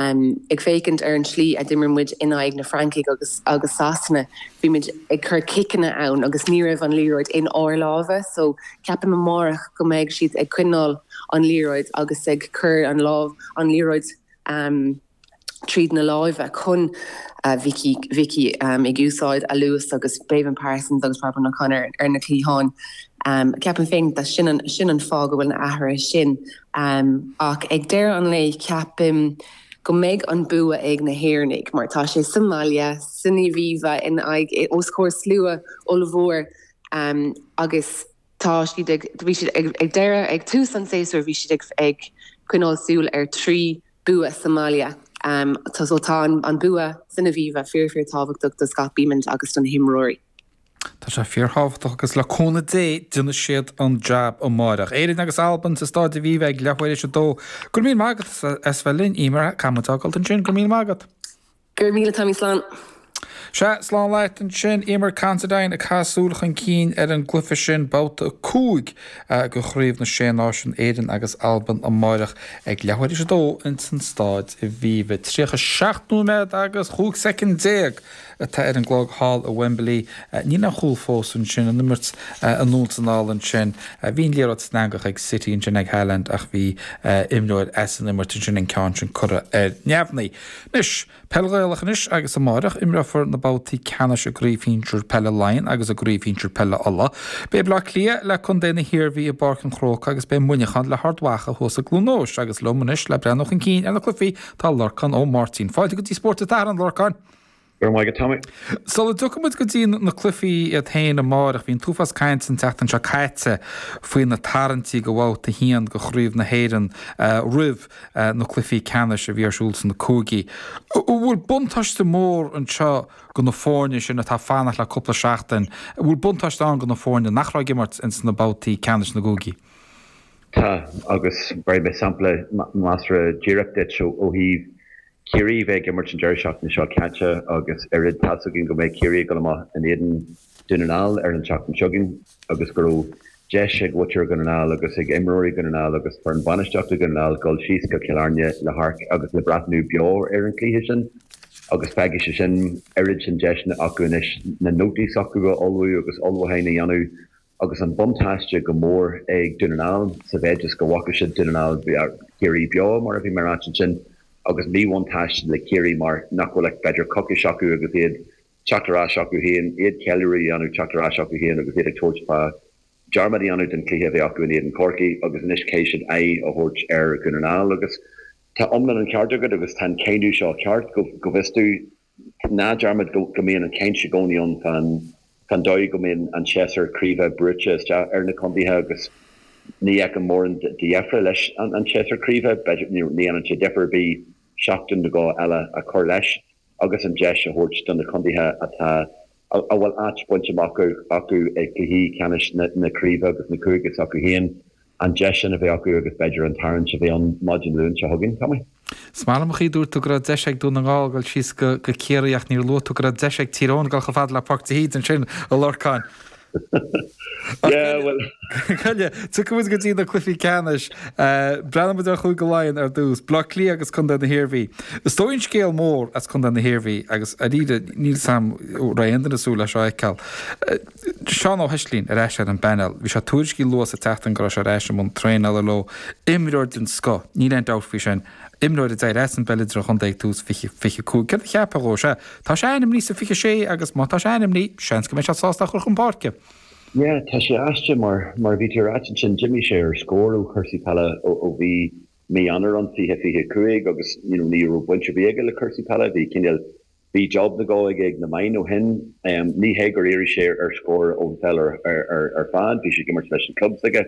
Ag féachaint ar an slí a d'imir muid in aghaidh na Francaigh agus Sasana, bhí muid ag cur ciceanna ann agus ní raibh an liathróid in ár lámha so ceapaim amárach go mbeidh siad ag coinneáil an liathróid agus ag cur an lámh, an liathróid tríd na láimhe chun Vikki ag úsáid a luas agus Béibhinn Parsons agus Robyn O'Connor ar na cliatháin. Ceapaim féin gurb é sin an fáth go bhfuil na hathruithe sin. ann ach ag deireadh an lae ceapaim go mbeidh an bua ag na hÉireannaigh mar tá sé sa mbaile, san Aviva in aghaidh, os comhair slua ollmhór agus tá siad ag, bhí siad ag, ag deireadh, ag tús an tséasúir bhí siad ag, ag coinneáil súil ar trí bua sa mbaile so tá an bua san Aviva fíor, fíor tábhachtach do Scott Bemand agus do na himreoirí. Tá sé fíor thábhachtach agus le cúnamh Dé déanfaidh siad an jab amáireach. Éirinn agus Albain sa Stáid Aviva ag leath uair is a dó. Go raibh míle maith agat as bheith linn, Eimear. Caithfidh muid d'fhágáilt ansin. Go raibh míle maith agat. Go raibh míle, Tommy. Slán. Sea, slán leat ansin, Eimear Considine ag caitheamh súil chun cinn ar an gcluiche sin, babhta cúig de Chraobh na Sé Náisiún, Éirinn agus Albain amáireach ag leath uair is a dó insan Stáid Aviva. Tríocha seacht nóiméad agus chúig soicind déag. atá ar an gclog thall i Wembley. Níl aon chúl fós ansin, an imirt anonn is anall ansin. Bhí an liathróid san eangach ag City ansin, ag Haaland, ach bhí imreoir as an imirt ansin, an ceann sin curtha ar neamhnaí. Anois, peil Ghaelach anois agus amáireach imreofar na babhtaí ceannais i gCraobh Shinsir Peile Laighean agus i gCraobh Shinsir Peile Uladh. Beidh Bleá Cliath le Contae na hIarmhí i bPáirc an Chrócaigh agus beidh Muineachán le hArd Mhacha thuas i gCluain Eois agus liom anois le breathnú chun cinn ar na cluichí Tá Lorcán Ó Máirtín. Fáilte go dtí Spórt an tSathairn a Lorcáin. Go raibh maith agat Tommy. Sula dtiocfaidh muid go dtí na cluichí iad féin amárach, bhí an t-uafás cainte an tseachtain seo caite faoi na tarraingtí do bhabhta a haon de Chraobh na hÉireann roimh na cluichí ceannais a bhí ar siúl sna cúigí. An bhfuil buntáiste mór anseo do na foirne sin atá ag fanacht le cúpla seachtain, an bhfuil buntáiste ann do na foirne nach raibh ag imirt ins na babhtaí ceannais sna cúigí? Tá, agus bhéarfaidh mé sampla measartha díreach duit ó thaobh Chiarraí bheith ag imirt an deireadh seachtaine seo caite agus oiread. Tá's againn go mbeidh Ciarraí ag dul amach in éadan Dún na nGall ar an tseachtain seo againn agus go raibh deis ag muintir Dhún na nGall agus ag imreoirí Dhún na nGall agus foireann bainistíochta Dhún na nGall dul síos go Cill Airne le hamharc agus le breathnú beo ar an chluiche sin agus beidh sé sin, oiread sin deiseanna acu anois na nótaí s'acu a ullmhú agus ullmhúcháin a dhéanamh. Agus an buntáiste go mór ag Dún na nGall sa mhéid is go bhfaca siad Dún na nGall, Ciarraí beo mar a bhí mé ag ráit ansin, agus míbhuntáiste le Ciarraí mar nach bhfuil ach b'fhéidir coicís acu agus iad teacht ar ais acu féin, iad ceiliúradh a dhéanamh teacht ar ais acu féin agus iad ag tabhairt faoi ullmhúchán a dhéanamh don chluiche a bheidh acu in éadan Chorcaí agus anois caithfidh siad aghaidh a thabhairt ar Dhún na nGall agus tá iomlán an ceart agat agus tá an cáineadh seo ceart go bhfios duit. Ná déan dearmad go mbíonn an chaint i gcónaí ann fán dóigh go mbíonn an séasúr craoibhe brúite isteach ar na contaetha agus níl a mhórán de dheifre leis an séasúr craoibhe. Ní dhéanann sé difear ar bith seachtain nó dhó eile a chur leis agus an deis a thabhairt do na contaetha atá a bhfuil áit bainte amach acu i gcluichí ceannais na craoibhe agus na cúige s'acu féin, an deis sin a bheith acu agus b'fhéidir an tarraingt a bheith ann maidin Dé Luain seo chugainn, Tommy. Is maith liom an chaoi a dúirt tú go raibh deis ag Dún na nGall a dhul síos go Ciarraí ach níor luaigh tú go raibh deis ag Tír Eoghain a dhul chomh fada le Páirc de hÍde ansin, a Lorcáin. Cogar, tiocfaimid go dtí na cluichí ceannais. Breathnóidh muid ar Chúige Laighean ar dtús, Baile Átha Cliath agus Contae na hIarmhí. Is dóigh an scéal mór as Contae na hIarmhí agus dáiríre ní shílim go raibh aon duine súil leis seo a fheiceáil. Seán Ó hEislín ar ais ar an bpainéal. Bhí sé tuairiscithe luath sa tseachtain go raibh sé ar ais i mbun traenála leo, imreoir den scoth, níl aon dabht faoi sin. Imreoir a d'éirigh as an bpeil idirchontae ag tús 2025, céard a cheapfá dhó? Is ea, tá sé ainmnithe sa 26 agus má tá sé ainmnithe, seans go mbeidh siad sásta é a chur chun páirce. Yeah, tá sé aisteach mar, mar a bhí tú ag ráit ansin, d'imigh sé ar scor ó chúrsaí peile ó bhí mí Eanáir ann, 20, 25 agus, you know, ní raibh baint ar bith aige le cúrsaí peile, bhí cinéal, bhí job nó dhó aige ag na meáin ó shin. Ní hé gur éirigh sé ar scor ón pheil ar, ar, ar fad, bhí sé ag imirt leis an chlub s'aige.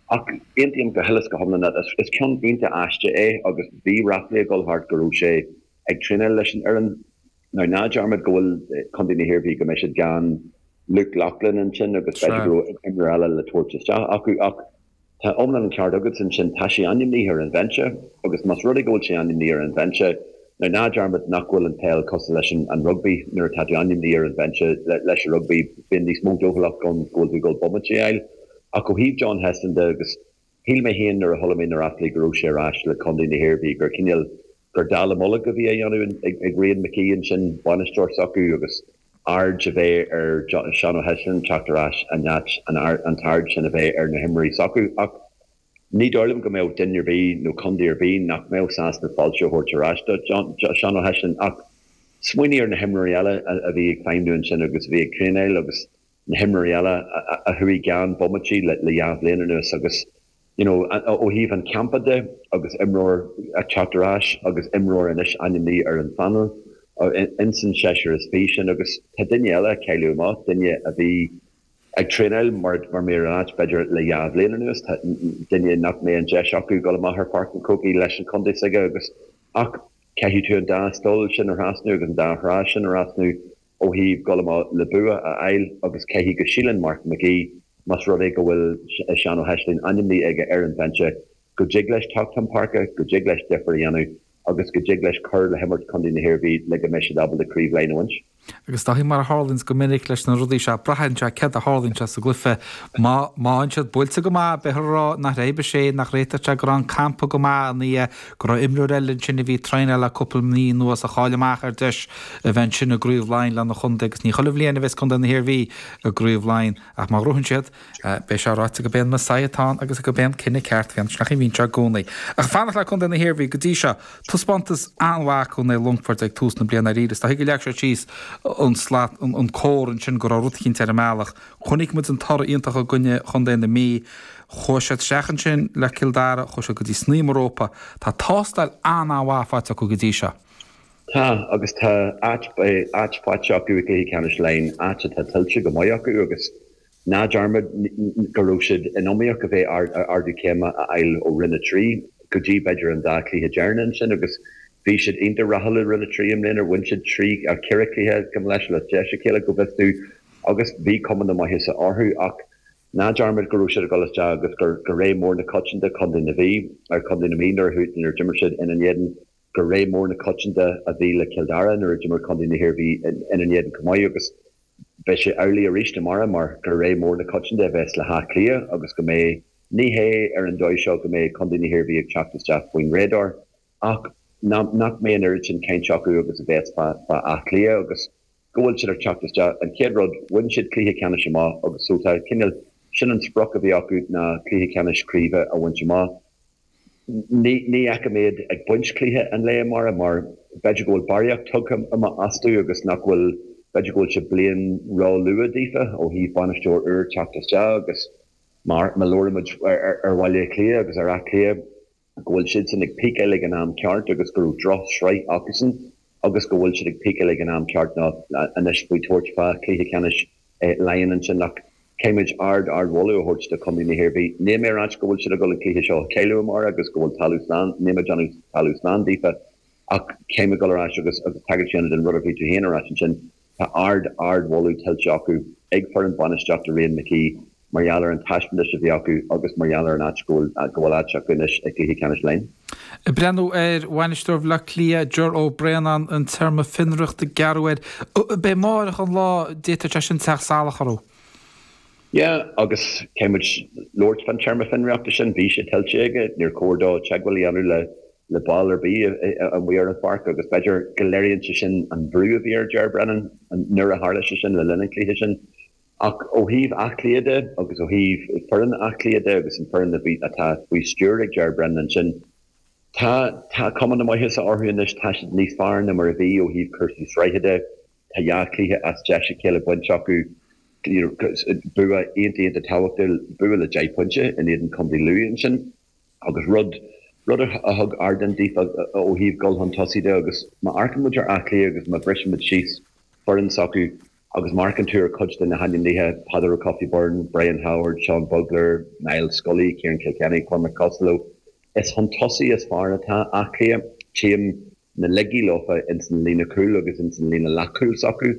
Ach aontaím go huile is go hiomlán leat. Is ceann iontach aisteach é agus bhí ráflaí ag dul thart go raibh sé ag traenáil leis an fhoireann. Now ná dearmad go bhfuil Contae na hIarmhí, go mbeidh siad gan Luke Loughlin ansin agus b'fhéidir go raibh imreoir eile le tabhairt isteach acu. Ach tá iomlán an ceart agat ansin, tá sé ainmnithe ar an bhinse agus más rud é go bhfuil sé ainmnithe ar an bhinse, now ná dearmad nach bhfuil an pheil cosúil leis an rugbaí, nuair atá tú ainmnithe ar an bhinse leis an rugbaí bíonn níos mó dóchúlacht ann go bhfuil tú ag dul bomaití a fháil. Ach ó thaobh John Heslin de, agus shíl mé féin nuair a chuala mé na ráflaí go raibh sé ar ais le contae na hIarmhí gur cineál gur dallamullóg a bhí á dhéanamh ag Mark McHugh ansin, bainisteoir s'acu, agus aird a bheith ar Sheán Ó Heisleann teacht ar ais in áit an t-aird sin a bheith ar na himreoirí s'acu. Ach ní dóigh liom go mbeadh duine ar bith nó contae ar bith nach mbeadh sásta fáilte a thabhairt ar ais do Sheán Ó Heisleann. Ach smaoinigh ar na himreoirí eile a bhí ag feidhmniú ansin agus a bhí ag traenáil agus. na himreoirí eile a chuaigh gan bomaití le dhá bhliain anuas agus you know ó thaobh an campa de agus imreoir ag teacht ar ais agus imreoir anois ainmnithe ar an phainéal insan seisear is fiche sin agus tá duine eile ag cailleadh amach, duine a bhí ag traenáil mar mar mír an áit b'fhéidir le dhá bhliain anuas, tá duine nach mbeidh an deis acu dul amach ar Pháirc an Chrócaigh leis an chontae s'aige agus ach caithfidh tú an dá stól sin a thrasnú agus an dá thrá sin a thrasnú. ó thaobh dul amach le bua a fháil agus caithfidh go síleann Mark Mac Aoidh más rud é go bhfuil Seán Ó hEislín ainmnithe aige ar an bhinse go dtig leis teacht chun páirce, go dtig leis difir a dhéanamh agus go dtig leis cur le himirt chontae na hIarmhí le go mbeidh siad ábalta Craobh Laighean a bhaint. Agus Dáithí mar a tharlaíonns go minic leis na rudaí seo braitheann sé céard a tharlaíonns sa gcluiche. Má má bhíonn siad buailte go maith beidh a rá nach raibh sé, nach réiteodh sé go raibh an campa go maith ina dhiaidh, go raibh imreoir eile ansin a bhí ag traenáil le cúpla mí anuas a chaill amach ar dheis a bheith ansin i gCraobh Laighean lena chontae agus ní chuile bhliain a bheas contae na hIarmhí i gCraobh Laighean ach má ghnóthaíonn siad beidh sé ráite gurb é an Messiah atá ann agus gurb é an cinneadh ceart a bhí ann is nach é a bhíonn sé i gcónaí ach fanacht le contae na hIarmhí go dtí seo taispeántas an-mhaith acu in aghaidh Longfoirt ag tús na bliana aríst is dóigh gur leag sé síos an slat an cór ansin go raibh rud eicínt ar an mbealach chonaic muid an toradh iontach i gcoinne chontae na Mí Chuaigh siad isteach ansin le Cill Dara, chuaigh siad go dtí snaidhm an rópa. Tá tástáil an-an-mhaith faighte acu go dtí seo. Tá agus tá áit faighte acu i gcluiche ceannais Laighean, áit atá tuillte go maith acu agus ná dearmad go raibh siad in iomaíocht a bheith ardú céime a fháil ó Roinn 3 go dtí, b'fhéidir, an dá chluiche deireanach ansin agus bhí siad iontach rathúil i Roinn 3 i mbliana. Bhain siad trí, ceithre chluiche, gabh mo leithscéal, as deis a chéile, go bhfios dúinn agus bhí cuma na maitheasa orthu ach, Ná dearmad go raibh siad ag dul isteach agus gur rogha mór na coitianta Contae na, bhí ar Chontae na Mí nuair a d'imir siad ina n-éadan, gur rogha mór na coitianta a bhí le Cill Dara nuair a d'imir Contae na hIarmhí ina n-éadan chomh maith agus beidh sé amhlaidh arís amárach mar gur rogha mór na coitianta a bheas le hÁth Cliath agus go mbeidh, ní hé ar an dóigh seo go mbeidh Contae na hIarmhí ag teacht isteach faoin radar. Ach nach mbeidh an oiread sin caint acu agus a bheas fá Áth Cliath agus go bhfuil siad ag teacht isteach. An chéad rud, bhain siad cluiche ceannais amach agus so tá cineál, sin an sprioc a bhí acu ná cluiche ceannais craoibhe a bhaint amach. Ní fheicim iad ag baint cluiche an lae amárach mar b'fhéidir go bhfuil barraíocht tugtha amach astu agus nach bhfuil, b'fhéidir go bhfuil sé bliain ró luath daofa ó thaobh bainisteoir úr teacht isteach agus mar labhair muid ar Bhaile Átha Cliath agus ar Áth Cliath, go bhfuil siadsan ag píceáil ag an am ceart agus go raibh droch sraith acusan agus go bhfuil siad ag píceáil ag an am ceart ná anois faoi tabhairt fá chluiche ceannais Laighean ansin ach caithfimid ard ard mholadh a thabhairt do Chontae na hIarmhí. Níl mé ag ráit go bhfuil siad a dhul an cluiche seo a chailleadh amárach agus go bhfuil talamh slán, níl mé ag déanamh talamh slán daofa ach caithfimid dhul ar ais agus tagairt a dhéanamh don rud a bhí tú féin ag ráit ansin. Tá ard, ard mholadh tuillte acu ag foireann bainistíochta Mark McHugh mar gheall ar an taispeantais a bhí acu agus mar gheall ar an áit go bhfuil áit acu anois i gcluiche ceannais Laighean. Ag breathnú ar bhainisteoir Bhleá Cliath Ger Ó Braonáin an téarma fionraíochta gearrtha air. Beidh amárach an lá d'fhéadfadh sé sin teacht salach orthu. Yeah agus caithfidh muid labhairt fán téarma fionraíochta sin, bhí sé tuillte aige, níor chóir dó teagmháil a dhéanamh le le ball ar bith amuigh ar an pháirc agus b'fhéidir go léiríonn sé sin an bhrú a bhí ar Ger Brennan nuair a tharla sé sin le linn an chluiche sin. Ach ó thaobh Áth Cliath de agus ó thaobh foireann Áth Cliath de agus an foireann atá faoi stiúir ag Ger Brennan ansin, tá cuma na maitheasa orthu anois. Tá siad níos fearr ná mar a bhí ó thaobh cúrsaí sraithe de. Tá dhá chluiche as déis a chéile bainte acu, bua iontach iontach tábhachtach, bua le deich bpointe in éadan Chontae Lú ansin. agus rud rud a thug ardán daofa ó thaobh dul chun tosaigh de agus má amharcann muid ar Áth Cliath agus má bhriseann muid síos foireann s'acu agus amharcann tú ar cuid de na hainmnithe, Peadar Ó Cofaigh Byrne, Brian Howard, Seán Bugler, Niall Scully, Ciarán Kilkenny, Cormac Costello, is chun tosaigh is fearr anois atá Áth Cliath. Tchím. na laigí leofa ins an líne chúil agus ins an líne leath-chúil s'acu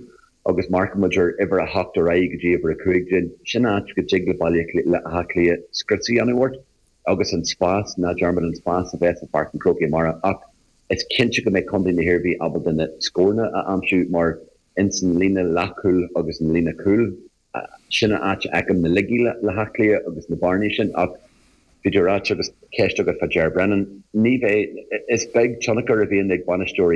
agus má amharcann muid ar uimhir a hocht ar aghaidh go dtí uimhir a cúig déag. Sin áit go dtig le Baile Átha Cliath scrios a dhéanamh ort agus an spás, ná dearmad an spás a bheas i bPáirc an Chrócaigh amárach ach is cinnte go mbeidh Contae na hIarmhí ábalta na scóranna a aimsiú mar ins an líne leath-chúil agus an líne chúil sin a áit a fheicim na laigí le hÁth Cliath agus na bearnaí sin ach bhí tú a ráit agus ceist agat fá Ger Brennan. Ní bheidh. Is beag tionchar a bhíonn ag bainisteoirí